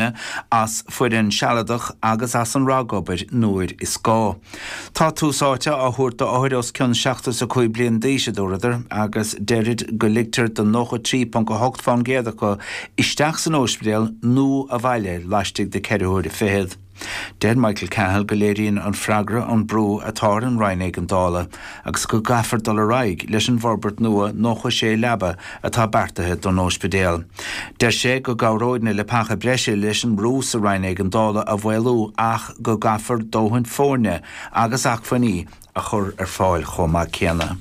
braith ar fhoireann sealadach agus ar an ragobair nuair is gá. Tá tús áite á thabhairt d'othair os cionn 75 bliain d'aois, a dúradar, agus deirid go ligtear do 93.8 fán gcéad acu isteach san óispidéal nó a bhaile laistigh de ceithre huaire fichead. Deir Michael Cahill go léiríonn an freagra an brú atá ar an Roinn Éigeandála agus go gcaithfear dul ar aghaidh leis an bhforbairt nua 96 leaba atá beartaithe don óispidéal. Deir sé go gcabhróidh na leapacha breise leis an mbrú sa Roinn Éigeandála a mhaolú ach go gcaithfear dóthain foirne agus acmhainní a chur ar fáil chomh maith céanna.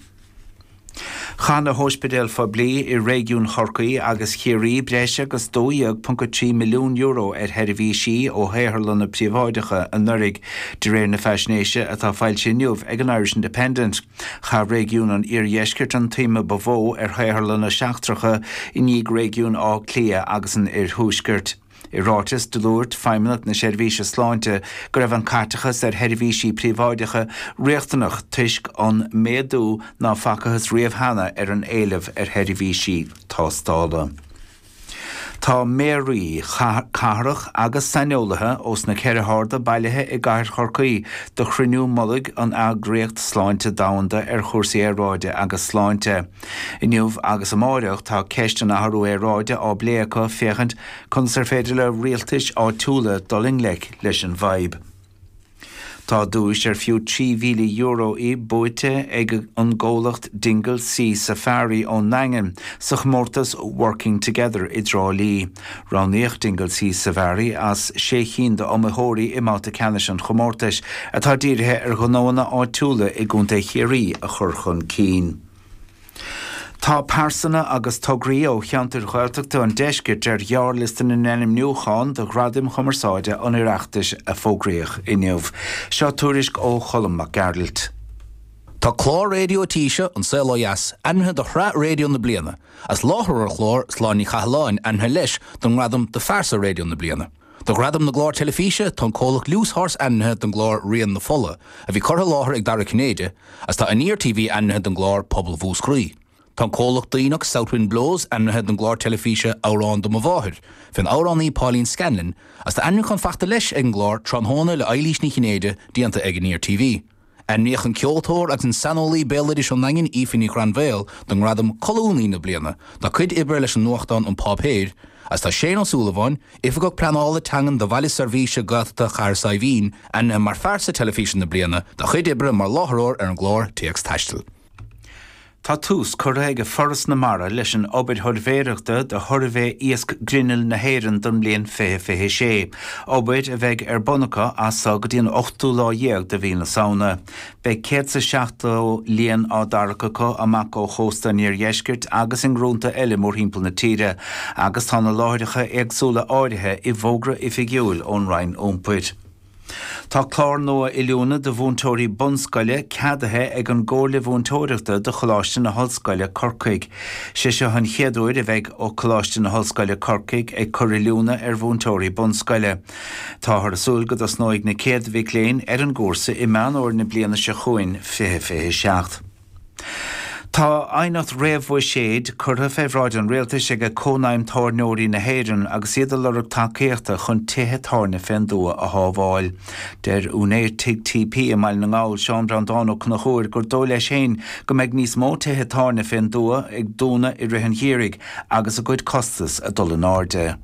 Chaith na hóispidéil phoiblí i réigiún Chorcaí agus Chiarraí breis agus €12.3 milliún ar sheirbhísí ó shaotharlanna príobháideacha anuraidh, de réir na faisnéise atá foilsithe inniu ag an Irish Independent. Chaith réigiún an Iardheiscirt an tsuim ba mhó ar shaotharlanna seachtracha, i ndiaidh réigiún Átha Cliath agus an Oirthuaiscirt. I ráiteas, dúirt Feidhmeannacht na Seirbhíse Sláinte go raibh an caiteachas ar sheirbhísí príobháideacha riachtanach toisc an méadú ná facathas riamh cheana ar an éileamh ar sheirbhísí tástála. Tá méaraí cathrach agus saineolaithe ós na ceithre hairde bailithe i gcathair Chorcaí do chruinniú mullaigh an Eagraíocht Sláinte Domhanda ar chúrsaí aeráide agus sláinte. Inniu agus amáireach tá ceist an athrú aeráide á bplé acu féachaint conas ar féidir le rialtais áitiúla dul i ngleic leis an bhfadhb. Tá duais ar fiú €3,000 í buaite ag an gcomhlacht Dingle Sea Safari ón nDaingean sa chomórtas 'Working Together' i dTrá Lí. Roghnaíodh Dingle Sea Safari as sé chinn d'iomaitheoirí i mbabhta ceannais an chomórtais, atá dírithe ar ghnóanna áitiúla i gContae Chiarraí a chur chun cinn. Tá pearsana agus tograí ó cheantair Ghaeltachta an Deiscirt ar ghearrliosta na n-ainmniúchán do Ghradaim Chumarsáide an Oireachtais a fógraíodh inniu. Seo tuairisc ó Cholm Mac Gearailt. Tá clár raidió an tí seo, An Saol Ó Dheas, ainmnithe do shraith raidió na bliana, agus láithreoir an chláir, Sláine Ní Chathalláin, ainmnithe leis don ngradam do phearsa raidió na bliana. Do Ghradam na gClár Teilifíse, tá an comhlacht Loose Horse ainmnithe don gclár Rian na Fola, a bhí curtha i láthair ag Dara Ó Cinnéide, agus tá Aniar TV ainmnithe don gclár Pobal Mhúscraí. Tá an comhlacht Duibhneach, South Wind Blows, ainmnithe don gclár teilifíse Amhrán do mo Mháthair, fén amhránaí Pauline Scanlon, agus tá ainmniúchán fachta leis ag an gclár Tráthnóna le hEilís Ní Chinnéide déanta ag Aniar TV. Ainmníodh an ceoltóir agus an saineolaí béaloidis ón nDaingean, Aoife Ní Ghrainbhéil, don ngradam 'Colúnaí na Bliana' dá cuid oibre leis an nuachtán An Páipéar, agus tá Séan Ó Súilleabháin, Oifigeach Pleanála Teangan do Bhaile Seirbhíse Gaeltachta Chathair Saidhbhín, ainmnithe mar Phearsa Teilifíse na Bliana dá chuid oibre mar láithreoir ar an gclár Téacs Taistil. Tá tús curtha ag Foras na Mara leis an obair shuirbhéireachta do Shuirbhé Iasc Grinnill na hÉireann don mbliain 2026, obair a bheidh ar bun acu as so go dtí an ochtú lá dhéag de mhí na Samhna. Beidh céad is a seachtó líon á dtarrac acu amach ó chósta an iardheiscirt agus i ngrúnta eile mórthimpeall na tíre agus tá na láithreacha éagsúla áirithe i bhfógra oifigiúil ón Roinn Iompair. Tá clár nua oiliúna do mhúinteoirí bunscoile ceadaithe ag an gComhairle Mhúinteoireachta do Choláiste na hOllscoile, Corcaigh. Sé seo an chéad uair a bheidh Coláiste na hOllscoile, Corcaigh ag cur oiliúna ar mhúinteoirí bunscoile. Táthar ag súil go dtosnóidh na chéad mhic léinn ar an gcúrsa i Meán Fhómhair na bliana seo chugainn, 2027. Tá aighneacht réamhbhuiséid curtha fé bhráid an Rialtais ag Cónaidhm Tábhairneoirí na hÉireann agus iad ag lorg tacaíochta chun tithe tábhairne fén dtuath a shábháil. Deir úinéir Tigh TP i mBaile na nGall, Seán Breandán Ó Conchúir gur dóigh leis féin go mbeidh níos mó tithe tábhairne fén dtuath ag dúnadh i rith an gheimhridh agus a gcuid costas ag dul in airde.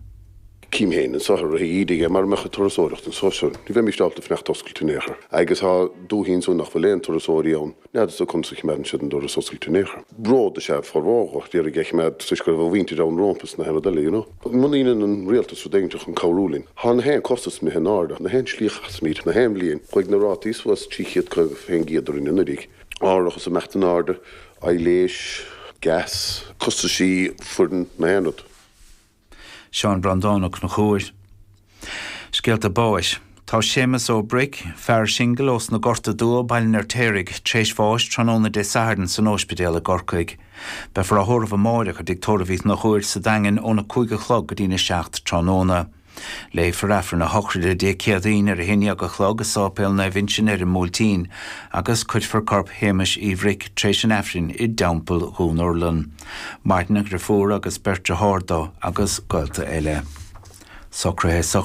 Cím féin an saothar a bheidh ídithe aige mara mbeadh an turasóireacht anso. Ní bheimíst ábalta fanacht oscailte in aon chor. Agus tá dúthaí anso nach bhfuil aon turasóirí ann. N'fheadarsa conas a chimeádann siad an doras oscailte in aon chor. Bród is ea formhór dó a d'iarraidh é chimeád toisc go raibh a mhuintir ann rómpa is na h-aon rud eile, you know. Muna ndeineann an Rialtas rud éiginteacht chun cabhrú linn, tá na h-aon costas imithe in áirde, na h-aon slí a chasaimíd, na h-aon bhliain, chuaigh na rátaí suas 350 fén gcéad orainn anuiridh, árachas ag imeacht in áirde, aibhléis, gas, costaisí, foireann, na h-aon rud. Seán Breandán Ó Cnuchúir. Scéalta Báis. Tá Séamus Ó Bric, fear singil ós na Gorta Dubha, Baile an Fheirtéaraigh, tréis bháis tráthnóna Dé Sathairn san óispidéal i gCorcaigh. Beifear á thórramh amáireach i dTigh Tórraimh Uí Chnuchúir sa Daingean óna cúig a chlog go dtín a seacht tráthnóna. Léifear Aifreann a shochraide Dé Céadaoin ar a haon dhéag a chlog i Sáipéal Naomh Uinseann ar an mBuailtín agus cuirfear corp Shéamuis Uí Bhric tréis an Aifrinn i dTeampall Dhún Urlann. Maireann a dheirfiúr agus beirt dearthár do agus gaolta eile. Socraithe i